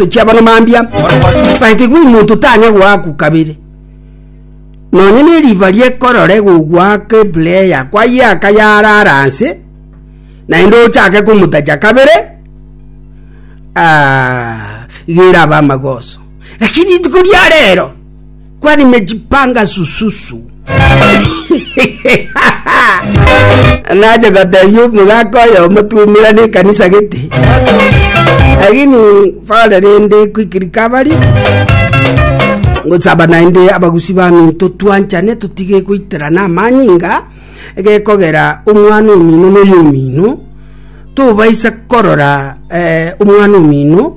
tochia abana mambia but igo omonto tanya goakwa kabere nonye ne river riekorore gogoaka eplayer kwayeaka yarara nse naende ochake komotacha kabere ah, igo erabe amagoso lakini rituko ria rero kwa nimejipanga sususu nache gotebia omogaka oyo omotumira na ekanisa gete lakini fare rende kwikirika abari ngochaba naende abagusi bami totwanchane totige goiterana amanyinga egekogera omwana omino na oyo omino tobaisa korora eh, omwana omino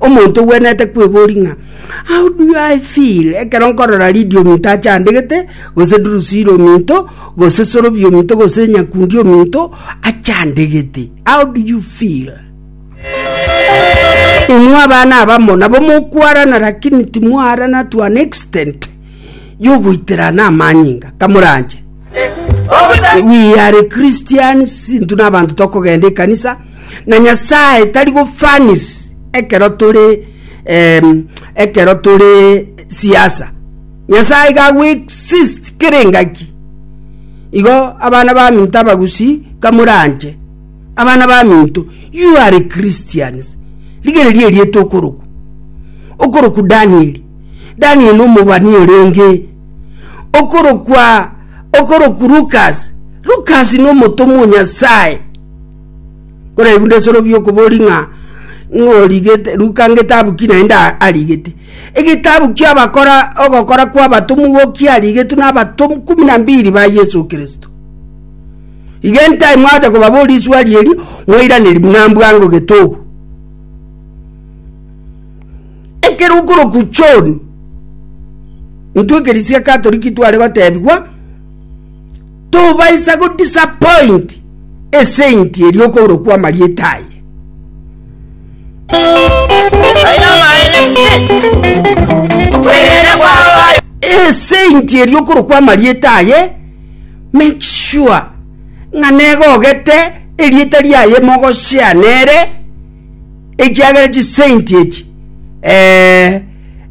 Omonto ogwenerete kweboria ng'a, How do I feel? Ekero nkorora Lidi ominto achandegete, gose Drusila ominto, gose Sorobi ominto, gose Nyakundi ominto achandegete. How do you feel? Imwe abana abamo nabo mokwarana lakini timwarana to an extent yogoiterana amanyinga kamoranche. We are Christians, sinto na abanto tokogenda ekanisa, na Nyasae tari gofanis ekero tore em, ekero tore siasa. Nyasae iga agwexist kera engaki. Igo abana ba minto abagusi kamoranche. Abana ba minto, you are Christians. Rigereria erieta okoroku. Okoroku Daniel. Daniel omobani orenge okorokwa okoroku Lucas. Lucas no omotomwa o Nyasae. Nkoregunda esorobio okobori ng'a ng'origete Luka ngetabu ki naende arigete. Egetabu ki'abakora ogokora kw'abatomwa ki arigetwe n'abatomwa kumi na mbiri ba Yeso Kristo. Iga entai mwacha kobaboria eswari eri, mwairaneria buna mbwango getobu. Ekero okorokwa John, intwe ekeresia Katoliki tware gotebigwa, Tobaisa go disappoint a saint erio okourokwa amarieta aye. A saint erio okorokwa amarieta aye make sure ng'a negogete erieta riaye mogoshare nere ekiagera chisaint echi eh,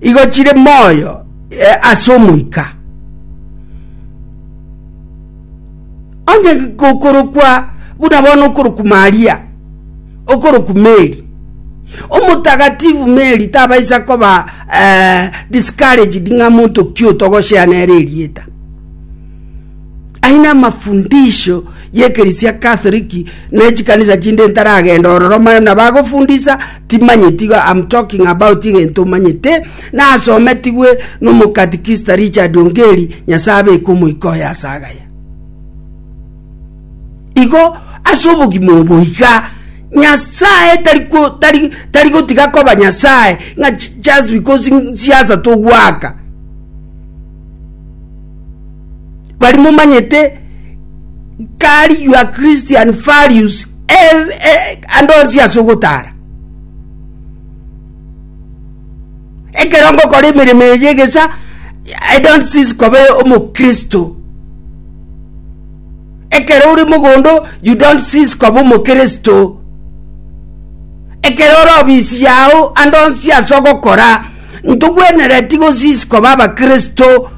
igo chire moyo eh, ase omoika Onye gokorokwa buna bono okorokwa Maria, okorokwa Mary, omotagatifu Mary tabaisa koba eh, discouraged ng'a monto ki otogoshea nere erieta. Aye namafundisho y'ekerisia Katholiki na echikanisa chinde ntaragenda ororo, maya nabagofundisa Timanyeti igo am talking about egento manyete nasometigwe nomokatikista Richard Ongeri Nyasae abeke omoika oye ase agaya. Igo ase obogima obo iga Nyasae tari ko tari tari gotiga koba Nyasae ng'a just because siasa togwaka Bari momanyete kari your Christian values ande onsi ase ogotara. Ekero ngokora emeremo eye egesa, I don't cease koba omokristo. Ekero ore mogondo, you don't cease koba omokristo. Ekero ore obisi yao ande onsi ase ogokora. Ntogwenereti gosiisi koba Abakristo,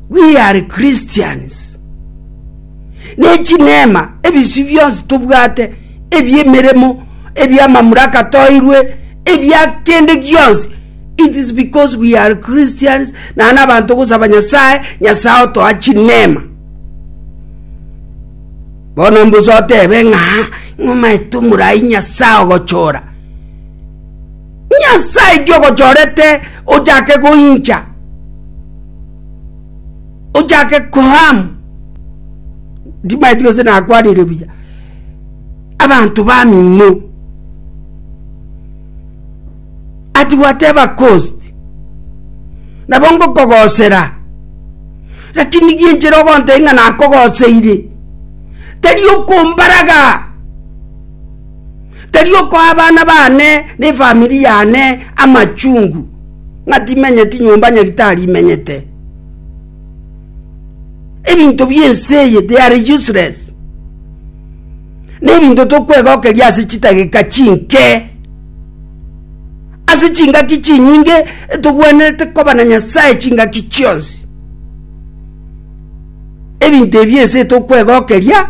we are Christians, ne chineema ebisio bionsi tobwate, ebi'emeremo, ebi'amamuraka toirwe, ebia kende gionsi, it is because we are Christians, na nabanto gosaba Nyasae, Nyasae otoa chineema. Bono mbosotebe ng'a ng'omaete omorai Nyasae ogochora. Nyasae ki ogochorete ochake goincha, ochake koam? Ndimaeti gose nakwanire buya, abanto bamino ati whatever cost nabo ngokogosera lakini gienchera ogontebia ng'a nakogoseire tari okombaraga Tari okoa abana baane na efamiri yane amachungu ng'a timenyeti nyomba Nyagetari imenyete. Ebinto bi'ense eye, they are useless. Nebinto tokwegokeria ase chidageka chinke. Ase chingaki chinyinge togwenerete koba na Nyasaye chingaki chionsi. Ebinto ebi ense etokwegokeria.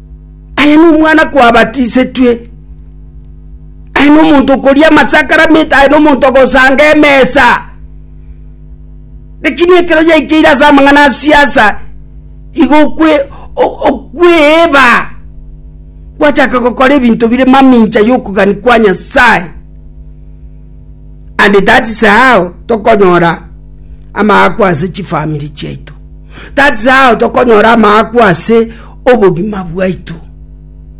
Aye nomwana kwabatisetwe, aye nomonto okoria amasakaramente, aye nomonto ogosanga emesa. Lakini ekero yaikeire ase amang'ana asiasa, igo okwe okweba gwachaka gokora ebinto bire mamincha yokogania kwa Nyasaye. And that is how tokonyora amaakwa ase chifamiri chiaito. That is how tokonyora amaakwa ase obogima bwaito.